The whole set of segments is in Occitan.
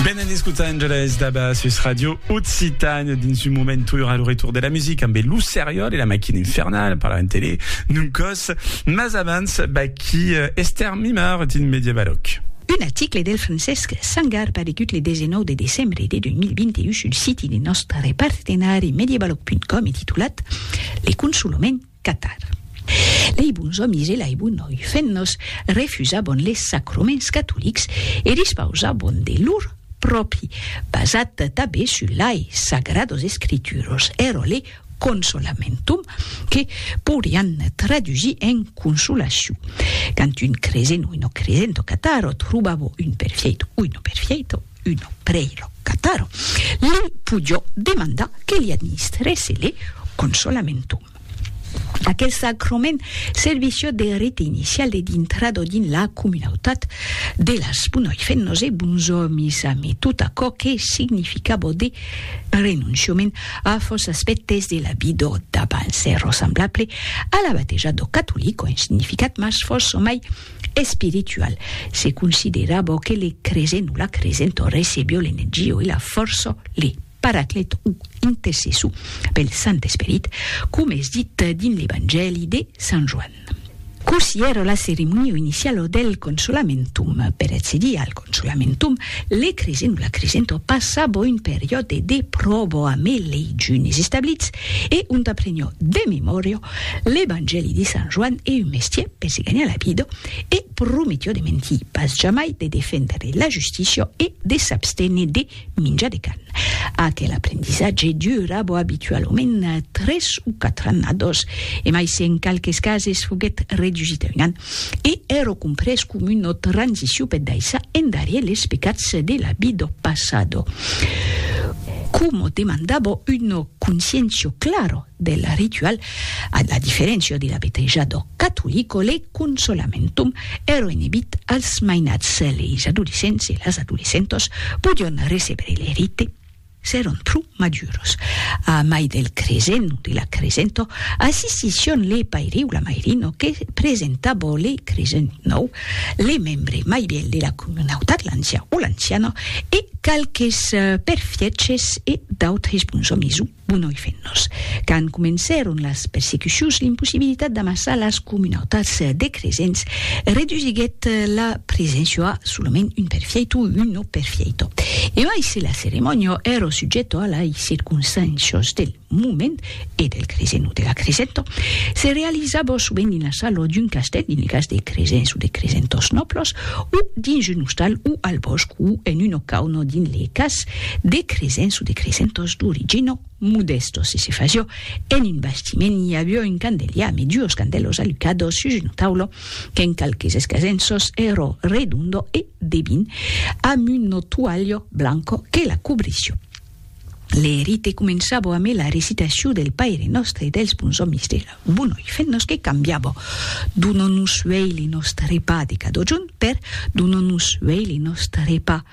Benent escuta Angeles Daba sus Radio Occitane dins un moment tour al retour de la musica amb Lo Seriol e la Maquina Infernale parlarem tele non còs mas abans baquí Esther Mimard dins Medievaloc. Un article del Francesc Sangar paregut le 19 de decembre de 2021 sul siti de nòstre partenari medievaloc.com e titulat Le consolement, Catar. Lei bons òmis e lei bonoi femnas refusabon les sacroments catolics e dispausabon de lor pròpi, basat tabé sus lei sagrados escrituros, erole consolamentum, que pourian tradusir en consolaciu. Quand un cresent oi no cresent o catar ò trobavo un perfièit oi no perfièito, uno preilo cataro, li pujò demandar que li administrèsse le consolamentum. Aquel sacroment serviciò de rite inicial de dintrado dins la comunautat de las bunoi femnos e buns òmis amé tot aquò que significabò de renonciament a fòs aspèctes de la vidò d'abans, ero semblable a la bateja d'o catolic o en significat mas fòs o mai Espiritual, se considera bo que le cresen o la cresent o recebio l'energia o la fòrça, le Paraclet o intercessor pel Sant Esperit, coma es dit dins l'Evangèli de Sant Joan. Cossí èra la ceremonia iniciala del Consolamentum per accedir al. Çò lamentom, le cresent o la cresento passabo un periòde de pròbo amé lei junis establits e ont aprenio de memòria l'Evangèli de Sant Joan e un mestier per se ganhar la vida e prometio de mentir pas jamai, de defendre la justícia e de s'abstener de Minja de can. Aquel aprendissatge dura bo abitualament tres o quatre annados, e mai se en qualques cases foguèt redusit a un an, e ero comprés com una transicion per daissar endarier les pecats de la vi do passado. Como demanda bo una conscientio clara del ritual, a la diferéncia de la betèja dò catolic o le consolamentum, eroenebit als mainats, leis adolescents e las adolescentas podion recebre le rite s'èron pro maduros. A mai del cresent o de la cresenta, assistission le paire o la mairina que presentava le cresent nòu, le membre mai vièlh de la comunautat, l'ancian o l'anciana, e qualques perfièches e d'autres bons òmis o. Bon oi fen nos. Quand comencèron las persecucions, l'impossibilitat d'amassar las comunautats de cresents redusiguèt la preséncia a solament un perfieito o un no perfieito. E mai se la ceremònia èra subjèta a lai circonstàncias del moment e del cresent o de la cresenta, se realizava sovent dins la sala d'un castèl, dins lo cas de cresents o de cresentors nòblas, o dins un ostal o al bòsc o en una cauna dins le cas De cresen su de cresen tos duri gino mudesto si si faciò en un bastiment i aviò un candeliam e duos candelos alucados sus uno taulo qu'en qualques escasenços ero redondo e debin amb uno tualho blanco que la cobrissiò. Le rite començabò ame la recitaciu del Paire Nostre e dels Bons Omis de la Bunoi Fennos que cambiabò Dono-nos uei le nostre pa de cadojun per Dono-nos uei le nostre pa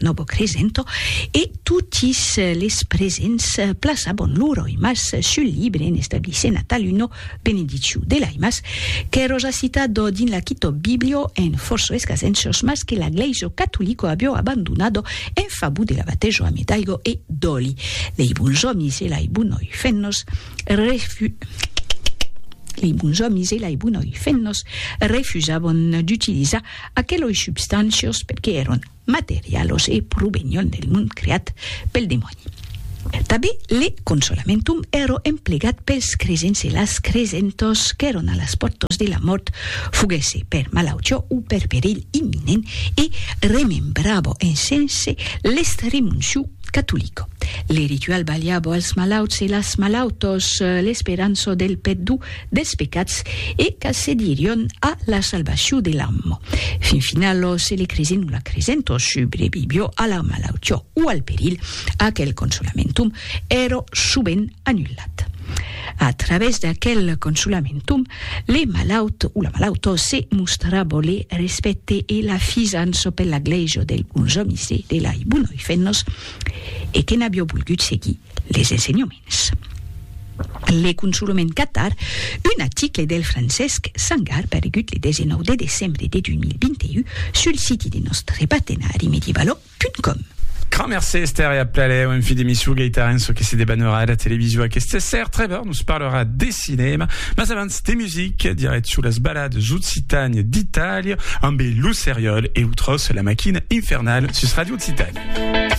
Novo Cresento e totis les presents plaçabon lor aimas sul libre en establissent a taluno benediciu de l'aimas qu'è roja citado dins la Kitòb Biblio en forço escasenços mas que la Glèiso Catolico abio abandonado en favor de la batejo ame d'aigo e d'òli lei bons òmis e lai bonoi fennos refu lei bons òmis e lai bonoi fennos refusabon d'utilizar aqueloi substancios perque èron materialos e provenion del mond creat pel demòni. Tanben le consolamentum èro emplegat pels cresents e las cresentòs qu'èron a las pòrtas de la mòrt, foguèsse per malautiá o per perilh imminent, e remembrava en sense l'estremuncio catolic. Le ritual balhava als malauts e las malautòs l'esperança del pèrdó dels pecats e qu'accedirion a la salvacion de l'am. Fin final, se le cresent o la cresent o subrevivió a la malautiá o al perilh, aquel consolamentum èra sovent anullat. A través d'aquel consolamentum, le malaut o la malauta se mostrava le respècte e la fisança per la glèisa dels bons òmis e de lai bonoifenhos e que n'avió volgut seguir. Les ensenhoments. Le consolament Catar, un aticle del Francesc Sangar paregut le 19 de decembre de 2021 sul siti de nòstre partenari medievalo.com. Grand mercé Esther e a Plaléu, en fin d'emissu Gaita Renzo que se debaneurà a la televisio aqueste ser, Trevor nos parlerà de cinema, mas abans de music, dirèt sus las balades occitanes d'Italia, ambe Lo Seriòl e lo Tros, la maquina infernal sus Radio Occitània.